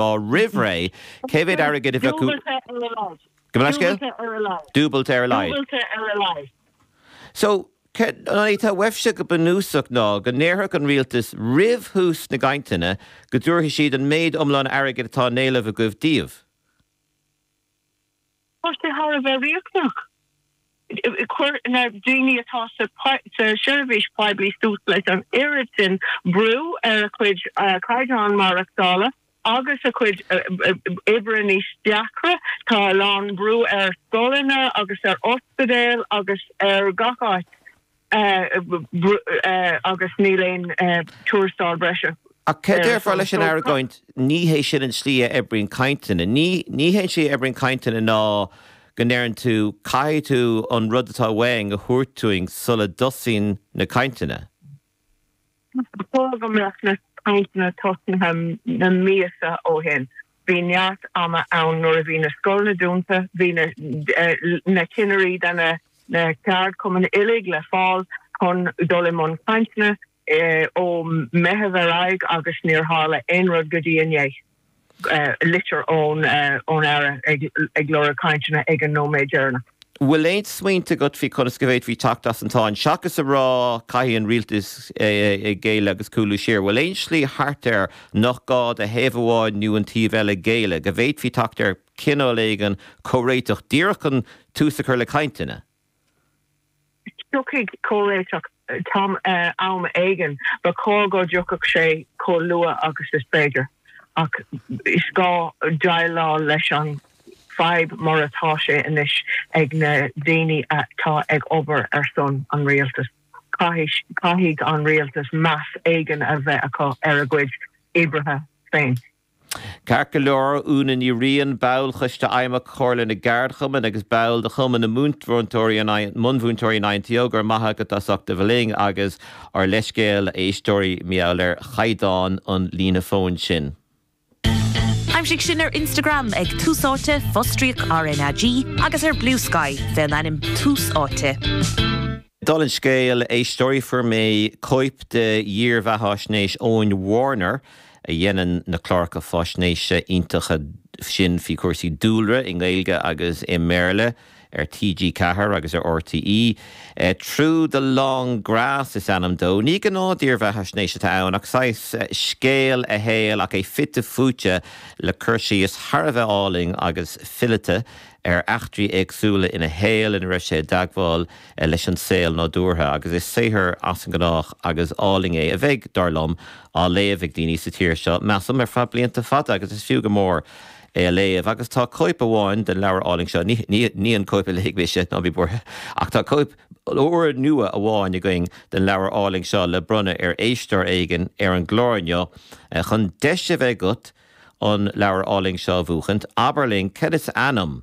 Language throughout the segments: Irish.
Lá roimh ré, cé mhéad airgid a bheadh uait? Dúbailte ar a laghad. Gabh mo leithscéal? Dúbailte ar a laghad. Dúbailte ar a laghad. Dúbailte ar a laghad. So, an é atá uaibhse go bunúsach ná go ndéarfadh an rialtas roimh thús na gcainteanna go dtabharfaidh siad an méid iomlán airgid atá in éileamh agaibh daoibh? Tá sé thar a bheith riachtanach, chuir na daoine atá sa tseirbhís poiblí suas leis an oiread sin brú ar a gcuid caighdeán maireachtála agus a gcuid oibre níos deacra. Tá a lán brú ar scoileanna agus ar ospidéil agus ar gach áit. agus níl aon tuarastal breise ar fáil. Ach céard a déarfá leis an argóint, ní hé sin an tslí a oibríonn cainteanna? Ní, ní hé an tslí a oibríonn cainteanna ná go ndeireann tú, caithfidh tú an rud atá uainn a thabhairt dúinn sula dtosaíonn na cainteanna. Ba chóir go mbeadh na cainteanna tosnaithe na míosa ó shin. Bhí neart ama ann nuair a bhí na scoileanna dúnta, bhí na cinnirí, de na ceardchumainn uilig le fáil chun dul i mbun cainteanna ó Meitheamh ar aghaidh agus níor tharla aon rud go dtí inné. litir ón Aire ag lorg cainteanna ag an nóiméad deireanach. Bhfuil aon smaointe agat faoi conas go bhféadfaí teacht as an tsáinn? Seachas a rá caithfidh an rialtas géilleadh agus cúlú siar, bhfuil aon slí thart air nach gá do thaobh amháin nó an taobh eile géilleadh, go bhféadfaí teacht ar chineál éigin comhréiteach díreach chun tús a chur le cainteanna? Tiocfaidh comhréiteach am éigin, ba chóir go dtiocfadh sé chomh luath agus is féidir, ach is gá déileáil leis an bhfadhb mar atá sé anois ag na daoine atá ag obair ar son an rialtais. Caithfidh an rialtas meas éigin a bheith acu ar a gcuid oibrithe féin. Ceart go leor, Úna Ní Riain, ball choiste fheidhmeach Chomhairle na gCeardchumann agus ball de Chumann na mBunmhúinteoirí an INTO, go raibh maith agat as ucht a bheith linn agus ár leithscéal a éisteoirí mar gheall ar chaighdeán an líne fóin sin. Aimsigh sinn ar Instagram ag Tús Áite, fostríoc RnaG, agus ar Bluesky fén ainm Tús Áite. Dála an scéil, a éisteoirí, fuair mé cóip de dhírbheatháisnéis Eoin Warner, a dhéanann na cláracha faisnéise iontacha sin faoi chúrsaí dúlra i nGaeilge agus i mBéarla ar TG4 agus ar RTÉ. Through the Long Grass is ainm dó. Ní gnáth dírbheathaisnéis atá ann ach saghas scéal a shaoil ach é fite fuaite le cur síos thar a bheith álainn agus fileata ar eachtraí éagsúla ina shaol ina raibh sé i dteagmháil leis an saol nádúrtha agus is saothar as an ngnách agus álainn é a bheidh, dar liom, á léamh ag daoine sa tír seo, measaim, ar feadh blianta fada agus is fiú go mór é a léamh. Agus tá cóip amháin den leabhar álainn seo, ní an cóip a léigh mise, ná bí buartha, ach tá cóip úrnua amháin againn den leabhar álainn seo le bronnadh ar éisteoir éigin ar an gclár inniu. Chun deis a bheith agat an leabhar álainn seo a bhuachaint, abair linn cad is ainm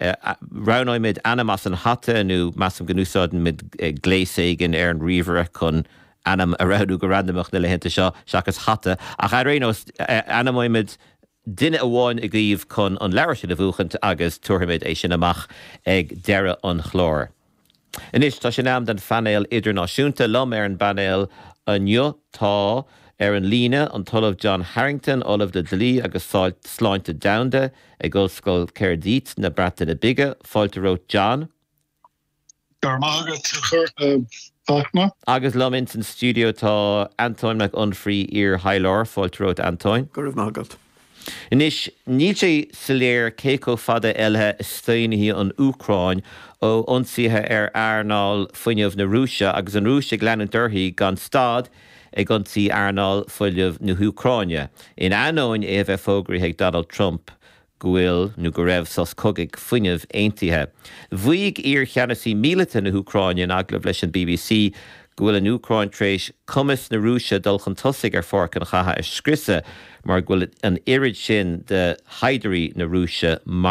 Roghnóimid ainm as an hata, nó measaim go n-úsáidfimid gléas éigin ar an ríomhaire chun ainm a roghnú go randamach na laethanta seo, seachas hata. Ach ar aon nós, ainmneoimid duine amháin agaibh chun an leabhar sin a bhuachaint agus tabharfaimid é sin amach ag deireadh an chláir. Anois tá sé in am don phainéal idirnáisiúnta. Liom ar an bpainéal inniu tá, ar an líne, an tOllamh John Harrington, Ollamh le Dlí agus Sláinte Domhanda ag Ollscoil Caerdydd na Breataine Bige. Fáilte romhat, John. Go raibh maith agat, a Fachtna. Agus liom ins an stiúideo tá Antóin Mac Unfraidh, iar-thaidhleoir. Fáilte romhat, Antóin. Go raibh maith agat. Anois, níl sé soiléir cé chomh fada eile a staonfaidh an Úcráin ó ionsaithe ar earnáil fuinnimh na Rúise agus an Rúis ag leanúint uirthi gan stad ag ionsaí earnáil fuinnimh na hÚcráine, in ainneoin é a bheith fógraithe ag Donald Trump go bhfuil nó go raibh sos cogaidh fuinnimh aontaithe. Mhaígh iar-cheannasaí míleata na hÚcráine in agallamh leis an bbc go bhfuil an Úcráin tar éis cumas na Rúise dul chun tosaigh ar pháirc an chatha a scriosadh mar go bhfuil an oiread sin de shaighdiúirí na Rúise maraithe.